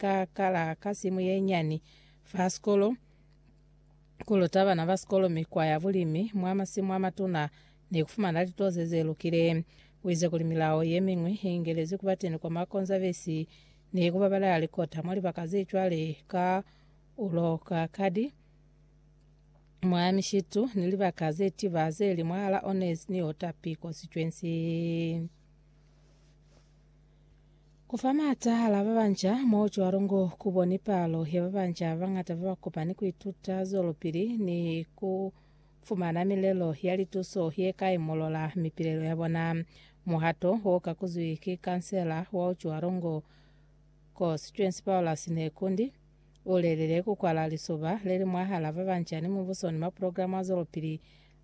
ka kala ka simu ye nyani fa sikolo, ku luta bana ba sikolo mikwa ya bulimi mwa masimu a matuna ni ku fumana litoze ze lukile. U ize kuli milao ye miñwi i ingelezi ku ba teni kwa Makonzavesi ni ku babalela likota mwa libaka ze cwale ka ulo ka kadi, mwa mishitu, ni libaka ze tiba ze li mwahal'a Ones ni Otapi kwa sicwensi. Ku fa maata hala ba banja mo cwalo ngo ku boni palo ya ba banja ba bañata ba ba kopani ku ituta zwelopili ni ku fumana milelo ya lituso ye ka imolola mipilelo ya bona. Muhato wo ka kuzwi ki kansela wa cwalo ngo Constituency Paulus Nekundi, u lelile ku kwala lisoba le li mwahala ba banja ni mubuso ni maprograma a zwelopili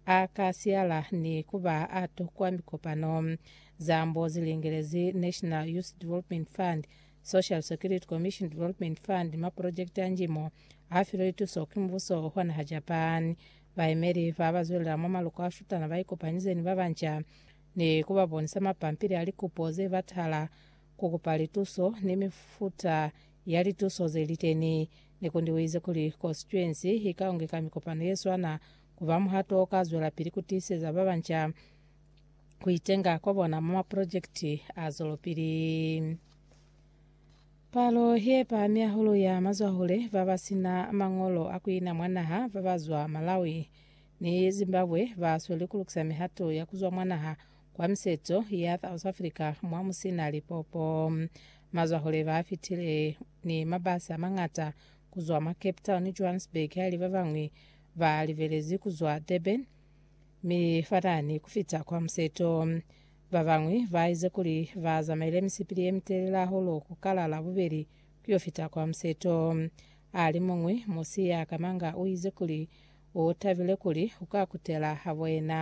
A ka siyala ni ku ba a tokwa mikopano. Zambo zi lingelezi National Youth Development Fund, Social Security Commission Development Fund ni maprojekiti a nji mo a filwe lituso ki mubuso wa naha Japan. Bayemeli ba ba zwelela mwa maluko a shutana ba ikopanyize ni ba banca ni ku ba bonisa mapampili a likupo ze batahala ku kupa lituso ni mifuta ya lituso ze li teni. Nekundi u ize kuli konsituensi i ka ungeka mikopano ye swana Ku ba muhato o ka zwelapili ku tiiseza ba banca ku itenga kwa bona mwa mapulojekiti a zwelopili. Palo ye pahami hahulu ya mazwahule ba ba si na mañolo a ku ina mwa naha ba ba zwa Malawi ni Zimbabwe ba sweli ku lukisa mihato ya ku zwa mwa naha kwa miseto ya South Africa mwa mu si na lipopo. Mazwahule ba fitile ni mabasi a mañata ku zwa mwa Cape Town ni Johannesburg haili ba bañwi Ba libelezi ku zwa Durban mi fatani ku fita kwa Museto. Ba bañwi ba ize kuli ba zamaile misipili ye mitelele hahulu ku kala Labubeli ku yo fita kwa Museto. Alimuñwi musi ya kamanga u ize kuli u tabile kuli u ka kutela habo yena.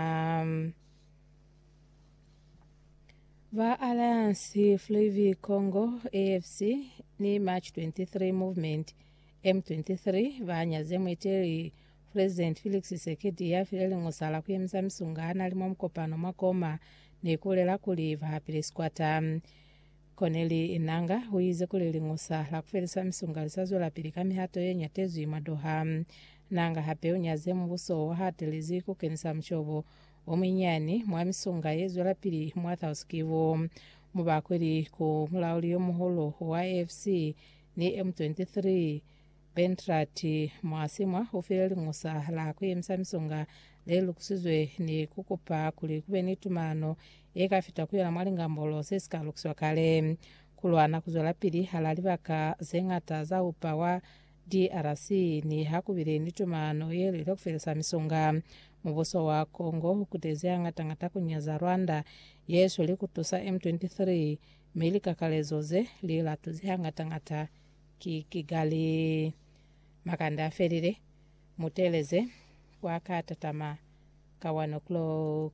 Ba Alliance Fleuve Congo, AFC, ni March 23 Movement, M23 ba nyaze muiteli President Felix Tshisekedi ya file liñosala ku yemisa misunga a na li mwa mukopano mwa Goma ni ku bulela kuli ba hapile sikwata. Corneille Enanga u ize kuli liñosa la ku felisa misunga li sa zwelapili ka mihato ye ñatezwi mwa Doha. Nanga hape u nyaze mubuso wa hatelezi ku kenisa mushobo o munyinyani mwa misunga ye zwelapili mwa South Kivu, mo ba kweli ku mulauli yo muhulu wa AFC, Ni M23, Bentrad Mwasimwa ufile liñusa la kuyemisa misonga lelukusizwe ni kukupa kuli kube ni tumano yekafita kuyona mwa lingambolo zesika lukiswa kale. Kulwana kuzwelapili hala libaka zeñata za upa wa DRC niha kubile ni tumano yelile kufelisa misonga. Mubuso wa Congo ukutezi hañata-ñata kunyaza Rwanda yesweli kutusa M23 Mi likakalezo ze li latuzi hangata-ngata ki Kigali. Makande a felile, mu teeleze kwa ka tatama ka one o'clock.